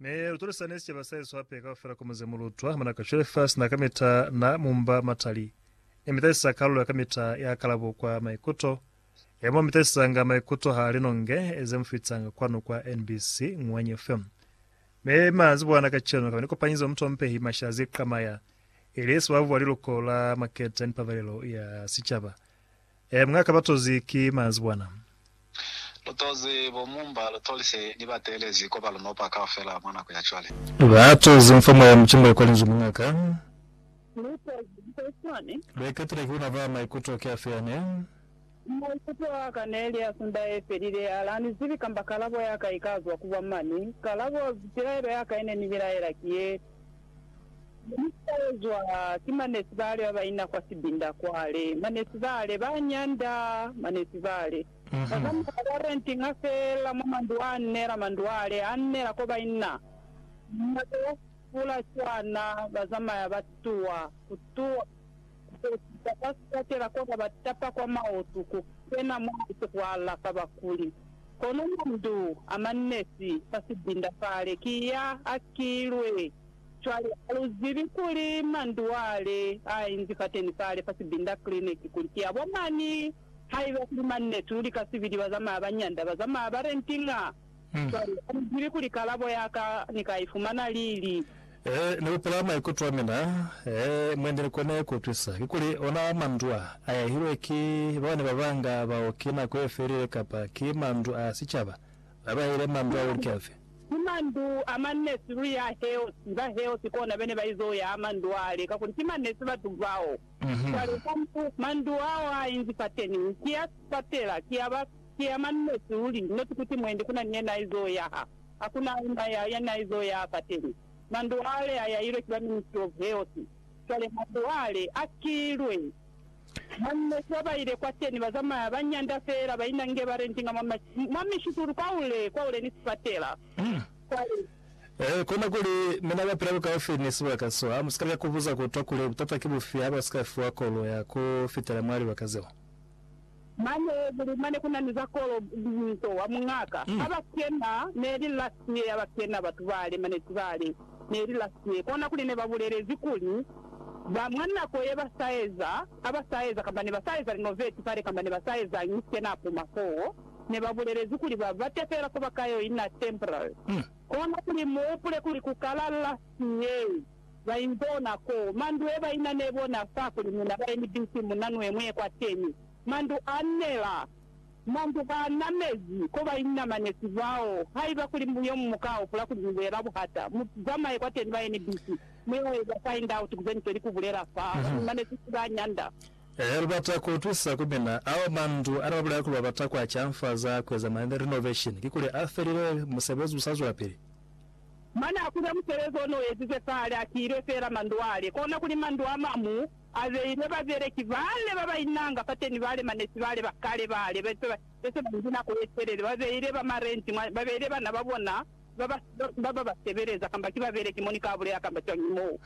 Ne lu tolisa ne sicaba sa hesu hape kaufela ku muze mu lutwa. Muna ka Cholefas na kamita na mumba matali e mitasisa kalulo ya kamita ya kalabo kwa maikuto, e mo mitasisanga maikuto ha linonge ze mu fitanga kwanu kwa NBC Ngwanyi FM. Me manzibwana kacenu kaba ni kopanyizo ya mutompehi Mashazi Qamaya, ili sibabu wa liluko la Maketa ni Pabalelo ya Sicaba. Ee, mwa kaba tozi ki manzibwana. Lutozi bo mumba lutolise ni batelezi koba lunopa kaufela mwa nako ya cwale. Ba tozi mfa mwa ya mucimba ikwa linzwi muñaka. Lutozi lika iswani. Lwa ikatela ki una ba maikuto ki afi ane. Maikuto aka neli a sunda ye felile, ala ni zibi kamba kalabo yaka ika zwa ku bwa mani. Kalabo, pilaelo yaka ine ni bilaela ki ye. Ni sa ezwa ki manesi bale ba ba ina kwa sibinda kwale. Manesi bale ba nyanda. Manesi bale ba zamaya ba rentinga fela mwa mandu a nela, mandu ale a nela ko ba ina. Nako ya fula cwana, ba zamaya ba tuwa, ku tuwa. Kukwetisa kwa sibakela kona ba tapa kwa maotu ku kena mwa muse ku alafa bakuli. Kono mandu a manesi fa sibinda fale ki ya a kilwe. Cwale ha lu zibi kuli mandu ale a inzi fateni fale fa sibinda clinic kuli ki a bomani. Haiba kuli manesi, lu lika sibili ba zamaya ba nyanda, ba zamaya ba rentinga. Cwale, ha ni zibi kuli kalabo ya ka ni ka i fumana lili. Ee, ni hupula maikuto a mina. Ee, mwe ndi ni kone ku utwisa, kikuli, ona mandu a, a yahilwe ki ba bane ba banga bao ki nako ye felile, kapa ki mandu a sicaba, ba ba yahile mandu ao lika fe. Ki mandu a manesi luli a heosi, ba heosi kona bene ba izo yaha mandu ale, kakuli ki manesi batu bao. Cwale, mandu ao a inzi fateni, ki a sipatela, ki a ba. Ki ya mani neti luli, neti kuti mwendi kuna ni yena aizo yaha. Hakuna auna ya, yani aizo yaha fateni. Mandu ale ayailwe ki ba Ministry of Health. Cwale mandu ale akilwe. Mani neti babaile kwateni bazamaya ba nyanda feela baina nge ba rentinga mwa ma, mwa mishutulu kwaule, kwaule ni sifatela. Cwale. Ee, kona kuli, mi na bapila bukaufi ni sibaka so. Ha musika lika kubuza kutwa kuli, Butata ki bufi ha basika fiwa kolo ya ku fitela mwa libaka zeo? Mane kuli mane kuna ni za kolo nto wa muñaka ha ba kena neli last year ba kena batu bale mane tibale neli last year kona kuli ne ba bulelezi kuli ba mwa nako ye ba sa eza ha ba sa eza kamba ne ba sa eza renovate pale kamba ne ba sa ezañi kena apuma foo ne ba bulelezi kuli ba bate fela fo ba ka yo ina temporary kona kuli mu hupule kuli ku kala last year Ba imbona ko mandu e ba ina ne bona fa kuli mina ba emi bisi mu na nwe mwe kwa teñi. Mandu a nela. Mandu a namezi ko ba inamanezi bao. Haiba kuli mu yomu mu ka hopola kuli ni bulela buhata, mu zamaye kwa teñi ba emi bisi. Mu yo eza find out ku ze ni sweli ku bulela fa ba ni mamezi ki ba nyanda. Lu bata ku utwisa ku mina ao mandu a ne ba bulela kuli ba bata ku a canfaza ku eza ma renovation, kikuli a felile? Musebezi u sa zwelapili? Mane a kuza musebezi o ne u ezize kale, a siilwe feela mandwale. Kona kuli mandu a mamu a beilwe babeleki bale ba ba inanga fateni, bale manesi bale ba kale bale be se ba nzi nako ye telele, ba beile ba marenti mwa, ba beile bana ba bona ba ba, ba ba ba sebeleza, kamba ki babeleki mo ni ka bulela kamba cwañi mo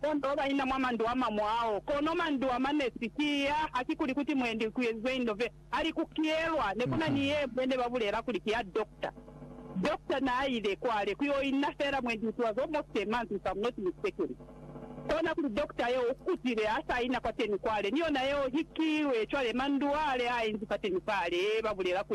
bonde ba ba ina mwa mandu a mamu ao. Kono mandu a manesi ki ya, hakikuli kuti mwendi ku ezizwe indobe. Ali ku kiyelwa ne ku na ni yemwe ne ba bulela kuli ki ya dokta. Dokta naa ile kwale ku yo inna fela mwendi utuwa zo mose manzwi fa munoti ni sekele. Kona kuli dokta yeo u kutile ha sa ina kwateni kwale ni yona yeo hikilwe cwale mandu ale a inzi fateni fale, ba bulela ku